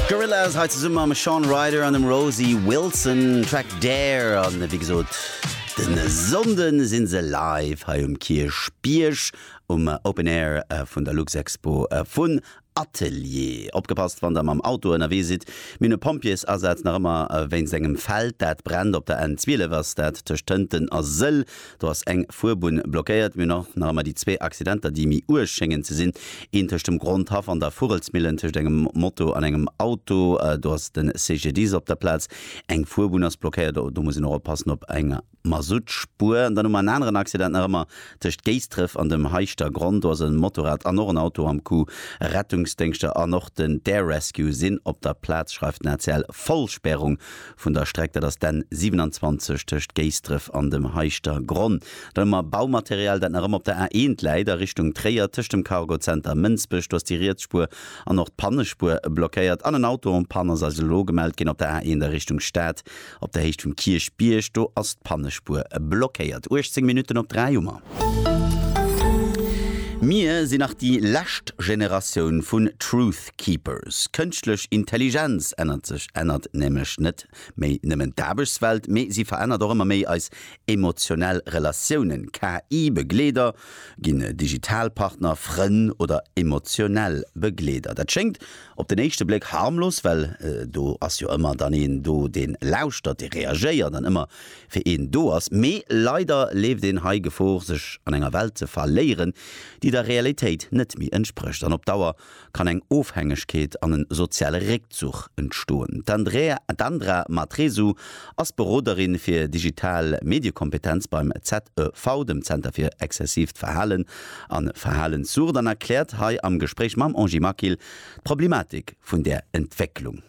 Gorillaz hei zesumme mam Shaun Ryder an dem Rosie Wilson, Track Dare. An wéi gesot, de Sonnde si se live hei um Kierchbierg um Open Air vun der Luxexpo vun Atelier. Opgepasst, wann der mam Auto ënnerwee sidd, mir hunn e Pompjeesasaz nach ëmmer wéinst engem Feld, dat brennt. Op der N12 ass dat tëscht Tënten a Sëll. Do ass eng Fuerbunn blockéiert. Mir hunn och nach ëmmer déi zwee Accidenter, déi méi uerg schéngen ze sinn, een tëscht dem Grondhaff an der Vugelsmillen, tëscht engem Moto an engem Auto. Do ass de CGDIS op der Plaz. Eng Fuerbunn ass blockéiert, do muss een och oppassen, op enger Masuttspuer. An dann hu mer en aneren Accident nach ëmmer tëscht Géisdref an dem Heischter Gronn. Do ass e Motorrad an och en Auto am Coup. Rettungsdéngschter an och den d'Air Rescue sinn op der Plaz, schreift den ACL. Vollspärung Vun der Streck, dat ass d'N 27 tëscht Géisdref an dem Heischter Gronn, dann hu mer Baumaterial, dat nach ëmmer op der A 1 läit a Richtung Tréier, tëscht dem Cargo Center Mënsbech, do ass déi riets Spuer an och d'Pannespuer blockéiert, an en Auto en panne ass eis elo gemellt ginn op der A 1 a Richtung Stad, op der Héicht vum Kierchbierg, do ass d'Pannespuer blockéiert. 18 Minutten op 3 hu mer. Mir sinn nach déi lescht Generatioun vun Truth. Keepers. Kënschtlech Intelligenz ännert sech, ännert nämlech net méi nëmmen d'Aarbechtswelt, mee si verännert och ëmmer méi eis emotionell Relatiounen. KI-Begleeder ginn digital Partner, Frënn oder emotionell Begleeder. Dat schéngt op den éischte Bléck harmlos, well do ass jo ëmmer dann een do, dee lauschtert, dee reagéiert an ëmmer fir een do ass. Mee leider leeft een hei Gefor, sech an enger Welt ze verléieren, déi der Realitéit net méi entsprécht an op Dauer kann eng Ofhängegkeet an en soziale Réckzuch entstoen. D'Andrea Matresu ass Beroderin fir digital Mediekompetenz beim ZEV, dem Zenter fir exzessiivt Verhalen a Verhalenssucht, an erkläert hei am Gespréich mam Angie Maquil d'Problematik vun där Entwécklung.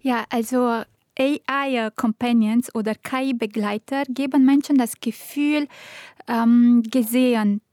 Ja, also AI Companions oder KI-Begleiter geben Menschen das Gefühl, gesehen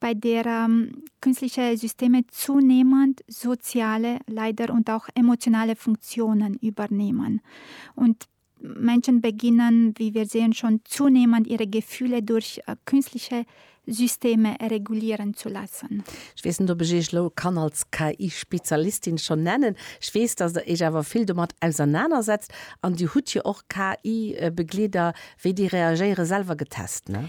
bei der künstliche Systeme zunehmend soziale, leider, und auch emotionale Funktionen übernehmen. Und Menschen beginnen, wie wir sehen, schon zunehmend ihre Gefühle durch künstliche Systeme regulieren zu lassen. Ech weess net, ob ech Iech elo kann als KI-Spezialistin schon nennen. Ech weess, dass Der Iech awer vill domat ausernanersetzt, an Dir hutt jo och KI-Begleeder, wéi déi reagéieren, selwer getest, ne?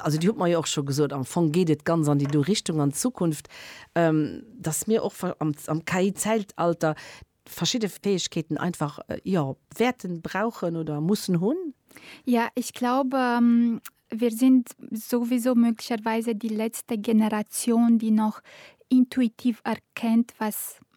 Also Dir hutt mer jo och scho gesot, am Fong geet et ganz an déi do Richtung an Zukunft, dass mir och am KI-Zäitalter verschidde Fäegkeeten einfach, jo, wäerten brauchen oder mussen hunn. Ja, ech glaube, wir sind sowieso möglicherweise die letzte Generation, die noch intuitiv erkennt, was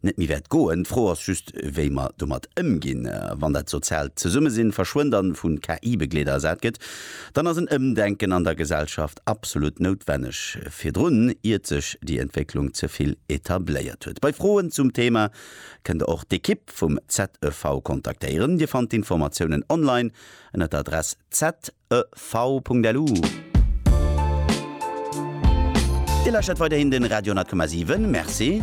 net méi wäert goen. D'Fro ass just, wéi mer domat ëmginn. Wann dat soziaalt Zesummesinn verschwënnt an vu KI-Begleeder ersat gëtt, dann ass en Ëmdenken an der Gesellschaft absolut noutwenneg, virdrun, iert sech déi Entwécklung ze vill etabléiert huet. Bei Froen zum Thema kënnt der och d'Ekipp vum ZEV kontaktéieren. Dir fannt d'Informatiounen online ënner der Adress zev.lu. Dir lauschtert weiderhin de Radio 10,7. Merci.